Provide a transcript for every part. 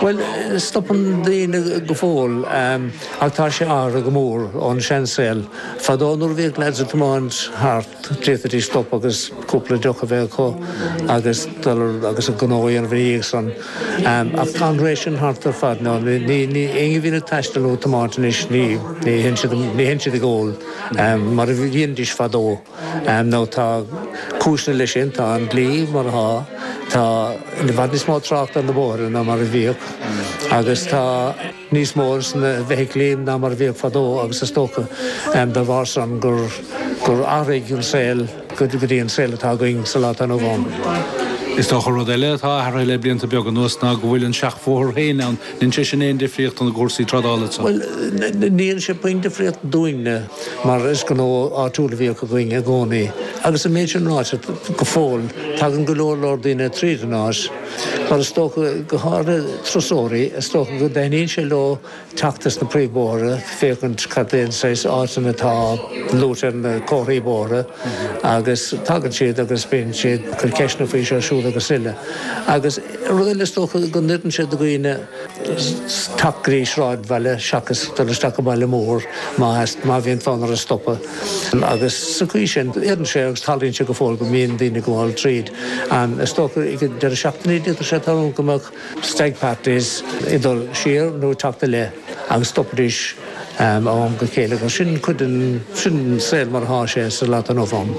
Bhuel, stopann daoine go fóill, ach tá sé athraithe go mór ón seansaol. Fadó nuair a bhíodh lads ag tiomáint thart, d'fhéadfaidís stopadh agus cúpla deoch a bheith acu agus dul agus a ngnó a dhéanamh ina dhiaidh san. Ach tá an ré sin thart ar fad now. Éinne a bhíonn ag taisteal nó ag tiomáint anois, ní théann siad ag ól mar a dhéanaidís fadó. nó tá cúiseanna leis sin, tá an dlí mar atá, tá i bhfad níos mó tráchta ar na bóithre ná mar a bhíodh agus tá níos mó de sna feithiclí ann ná mar a bhíodh fadó agus is dócha dá bharr san gur athraigh an saol go dtí an saol atá againn sa lá atá inniu ann. Is dócha rud eile atá athraithe le blianta beaga anuas ná go bhfuil an seachbhóthar féin ann Ndéanann sé sin aon difríocht ó na gcúrsaí trádála. Bhuel, ní dhéanann sé puinn difríocht dúinne, mar is gnó áitiúil a bhíodh againn i gcónaí. Agus an méid sin ráite, go fóill tagann go leor leor daoine tríd an áit, mar is dócha, go háirithe turasóirí, is dócha go dtaitníonn sé leo teacht as na príomhbóithre féachaint cad é an saghas áiteanna atá luaite ar na comharthaí bóithre. Agus tagann siad agus bíonn siad ag cur ceisteanna faoi seo, siúd agus uile. Agus rud eile, is dócha go n-oireann sé do dhaoine teacht go dtí sráidbhaile seachas dul isteach i mbaile mór má bhíonn fonn orthu stopadh. Agus sa chaoi sin, oireann sé agus tarlaíonn sé go fóill go mbíonn daoine ag gabháil tríd. Is dócha, ag deireadh seachtaine a d'fhéadfadh sé tarlú go mbeadh. Stag parties ag dul siar nó ag teacht i leith agus stopaidís ó am go chéile agus sin cuid den, sin an saol mar atá sé sa lá atá inniu ann.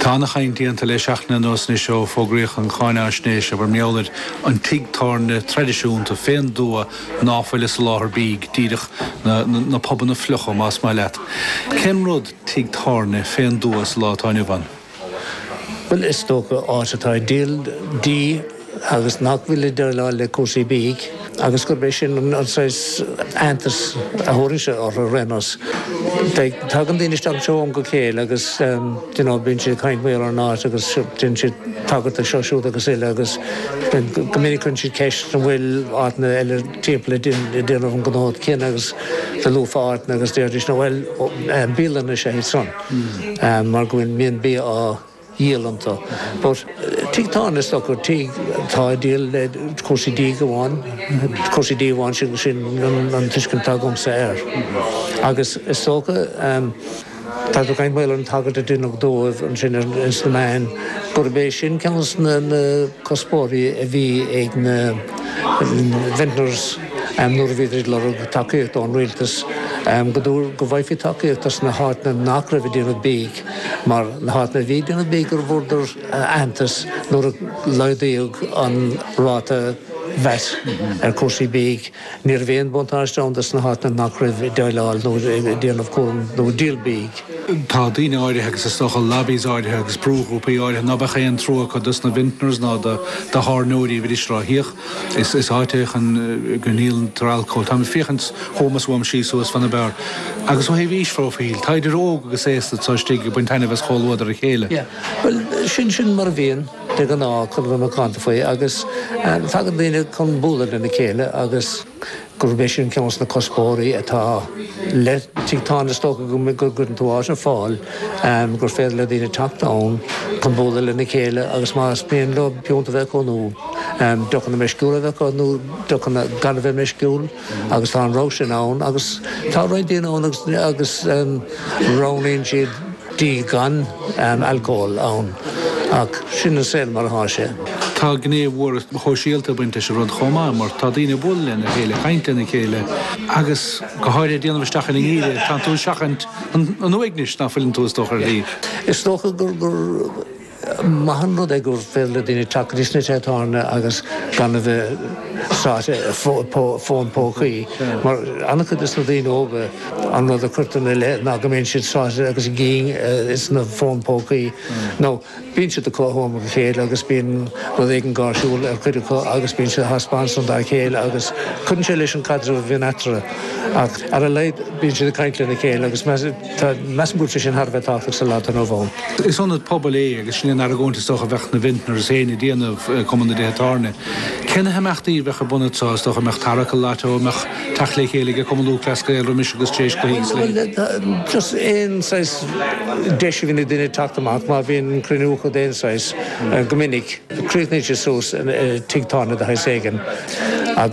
Tá ana-chaint déanta le seachtain anuas anois ó fógraíodh an cháinfhaisnéis abair mar gheall ar an tigh tábhairne traidisiúnta fén dtuath ná fuil ag soláthar bídh díreach na na pubanna fliucha más maith leat. Cén rud tigh tábhairne fén dtuath sa lá atá inniu ann? Bhuel, is dócha, áit atá ag díol dí agus nach bhfuil ag déileáil le cúrsaí bídh, agus gurb é sin an saghas aitheantas a thabharfainnse orthu ar aon nós. Tagann daoine isteach anseo ó am go chéile agus, you know, bíonn siad ag caint faoi an áit agus déanann siad tagairt do seo, siúd agus uile agus go minic cuireann siad ceist an bhfuil áiteanna eile timpeall ag déanamh an gnó céanna agus dá luafá áiteanna agus déarfaidís, no bhuel, bialanna is ea iad san. mar go bhfuil mbíonn bia á dhíol iontu. But tigh tábhairne is dócha, tigh atá ag déileáil le cúrsaí dí amháin, cúrsaí dí amháin, sin an tuiscint atá agamsa air. Agus is dócha, toisc an mbaol leis an tagairt a deineadh dóibh ansin ins na meáin, gurb é sin ceann de na cuspóirí a bhí ag na vintners, nuair a bhíodar ag lorg tacaíochta ón rialtas, go dtúr go bhfaighfí tacaíocht dos na háiteanna nach raibh ag déanamh bídh, mar na háiteanna a bhí ag déanamh bídh go bhfuaradar aitheantas nuair a laghdaíodh an ráta vat ar chúrsaí bídh. Ní raibh aon bhuntáiste ann dos na háiteanna nach raibh ag déileáil nó ag déanamh cúram nó díol bídh. Tá daoine áirithe agus is dócha lobbies áirithe agus brúghrúpaí áirithe ná beadh aon trua acu dos na vintners ná do thábhairneoirí muran miste tuíoch Is áit é ann go ndíoltar alcól. Táim ag féachaint chugham is uaim síos suas fan na beár. Agus ó thaobh aois-phróifíl, tá idir óg agus aosta atá istigh ag baint taitneamh as chomhluadar a chéile. Yeah, bhuel, sin sin mar a bhíonn, de ghnáth, chun a bheith macánta faoi, agus tagann daoine chun bualadh lena chéile agus. gurb é sin ceann de na cuspóirí atá le tigh tábhairne, is dócha go gcuireann tú áit ar fáil gur féidir le daoine teacht ann chun bualadh lena chéile agus más mian leo piúnt a bheith acu nó deochanna meisciúla a bheith acu nó deochanna gan a bheith meisciúil agus tá an rogha sin ann agus tá roinnt daoine ann agus roghnaíonn siad dí gan alcól ann ach sin an saol mar atá sé. Tá gné mhór shóisialta ag baint leis an rud chomh maith mar tá daoine ag bualadh lena chéile, ag caint lena chéile agus go háirithe ag déanamh isteach ar an ngeimhreadh, tánn tú ag seachaint an uaignis ná fuileann tú is dócha ar thaobh. Is dócha gur. maith an rud é gur féidir le daoine teacht go dtí sna tithe tábhairne agus gan a bheith sáite i bhfón pócaí. Mar an-chuid de sna daoine óga, an rud a curtar ina leith ná go mbíonn siad sáite agus a gcinn insna fóin pócaí. Nó bíonn siad i gcuideachta a chéile agus bíonn rud éigin gáirsiúil ag cuid acu agus bíonn siad á thaispeáint ansan dá chéile agus cuireann sé leis an caidreamh a bhíonn eatarthu. Ach ar a laghad bíonn siad ag caint lena chéile agus Measaim gur rud é sin thar a bheith tábhachtach sa lá atá inniu ann. Is ionad pobail é agus sin an argóint is dócha a bheadh na Vintners féin a' déanamh, Cumann na dTithe Tábhairne. Cé na himeachtaí a bheadh ar bun anseo, is dócha an mbeadh tarrac i lató, an mbeadh teacht le chéile ag Cumann Lúthchleas Gael roimis agus tar éis cluichí is a leithéid? Bhuel, just aon saghas deis a bhíonn ag duine teacht amach, má bhíonn cruinniúchadh d'aon saghas, go minic, críochnaíonn sé suas i tigh tábhairne de shaghas éigin agus.